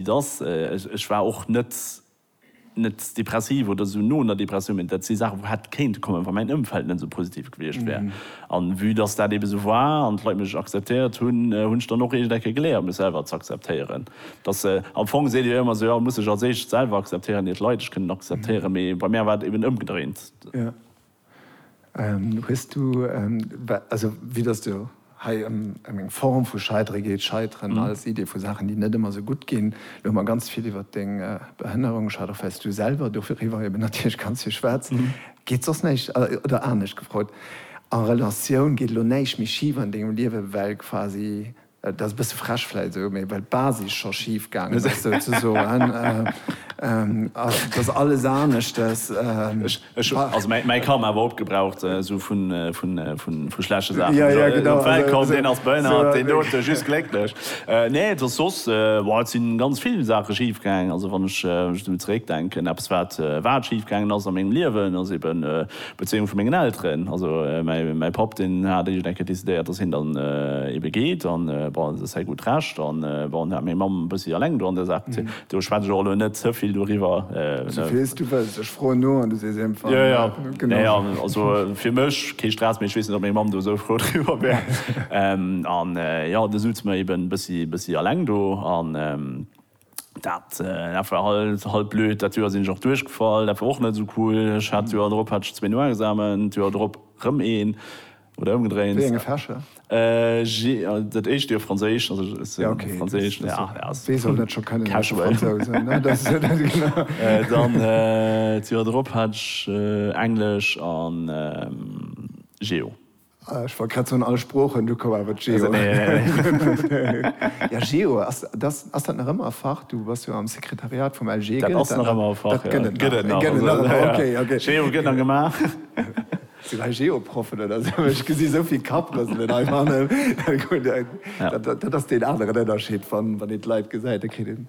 Et ass, ech war och net, net depressiv oder esou no un der Depressioun, mä dat si Saachen, wou hätte kéinte kommen, wa mäin Ëmfeld net esou positiv gewiescht wär. An vue dass dat ebe esou war an d'Leit mech akzeptéiert hunn, hunn ech dann och eegent eng Kéier geléiert, mech selwer ze akzeptéieren. Dass, am Fong seet Dir jo ëmmer esou, jo, muss sech als éischt selwer akzeptéieren, ier d'Leit ech kënnen akzeptéieren, mä bei mär war et eben ëmgedréint. Hues du, also vue dass du hei ëm eng Form vu Scheidere geet, Scheiteren als Idee vu Saachen, déi net ëmmer esou gutt ginn, elo hu mer ganz vill iwwert deng Behënnerung geschwat, och well s du selwer doriwwer eben natierlech ganz vill schwätz, geet soss näischt, oder anescht gefrot, a Relatioun, geet elo näischt méi schif an dengem Liewe well quasi Et ass e bësse frech vläit esou, mee well d'Basis scho schif gaangen ass, souzesoen, ass dass alles aneschtes. Ech hu also mäi Karma awer opgebraucht, esou vu schlechte Saachen. Jo, jo, genau. Op d'Welt komm, deen ass behënnert, deen dote just glécklech. Nee, et ass soss, bon, et si ganz vill Saache schif gaangen. Also wann ech esou zeréckdenken, eppes wat, wat schif gaangen ass a mengem Liewen, ass eben, D'Bezéiung vu mengen Elteren, also mäi Papp deen hat eréischt eng Kéier decidéiert, datt hien dann ebe geet an bon, dat ass säi gutt Recht an bon, dat hat meng Mamm e bëssi eleng do an där Saach bezéien. Do schwätz ech och elo net ze vill doriwwer. Souvill s du wëlls, ech froen no an du sees émfall jo. Jo, jo, jo, also fir mech kee Stress, mee ech weess net, ob meng Mamm do esou frou driwwer wär an jo, du sutz mer eben e bëssi eleng do an. Dat war halt blöd. Dat Joer sinn ech och duerchgefall. Dat war och net esou cool. Ech hat d'Joer drop hat ech zwee Noexamen, d'Joer drop rëm een oder ëmgedréint. Wéi enge Fächer? Dat éischt Joer Franséisch, also ech hat Franséisch. Wee soll dat scho kënnen, e Fransous? Dann d'Joer drop hat ech Englesch a Geo. Ech wollt grad soen, all Sproochen, du koum awer d'Geo. Ja, Geo, ass dat nach ëmmer e Fach? Du bass jo am Sekretariat vum LG. Dat ass nach ëmmer e Fach, jo. Dat gëtt et nach. Dat gëtt et nach, jo. Okay, okay. Geo gëtt nach gemaach. Sinn hei Geo-Proffen oder esou? Ech gesi esou vill Kapprëselen hei fannen. Dat ass deen aneren Ënnerscheed, wann een d'Leit gesäit, da kritt een.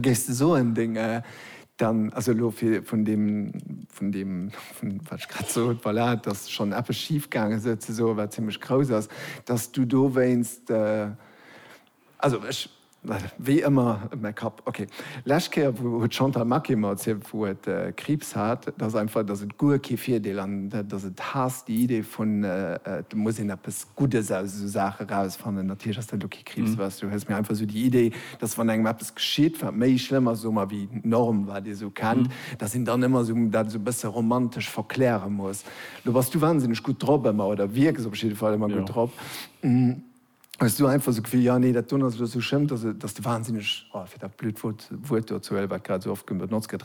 Géifs de soen, deng, dann, also elo fir vun deem, vun deem, vun wat ech grad sot, voilà, dass schonn eppes schif gaange sou ze soen, wat zimmlech grouss ass, dass du dowéinst, also ech, wéi ëmmer, mäi Kapp, ok. Lescht Kéier wou, huet d'Chantal Maquet mer erzielt, wou et Kriibs hat, dass einfach, dass et guer kee Virdeel an dass et haasst déi Idee vun, et muss een eppes Guddes aus esou Saache rausfannen. Natierlech ass dat elo kee Kriibs, weess du, hues, mä einfach esou déi Idee, dass wann engem eppes geschitt, wat méi schlëmm ass, soe mer, wéi d'Norm, wat ee sou kennt, dass een dann ëmmer sou dat sou e bësse romantesch verkläre muss. Lo bass du wansinneg gutt drop ëmmer, oder wierks op jidde Fall ëmmer gutt drop. Hues du einfach sou d'Gefill, jo, nee, dat doen ass elo sou schlëmm, dass de wansinneg, oh, fir dat blöd Wuert do ze huelen, wat grad sou oft benotzt gëtt,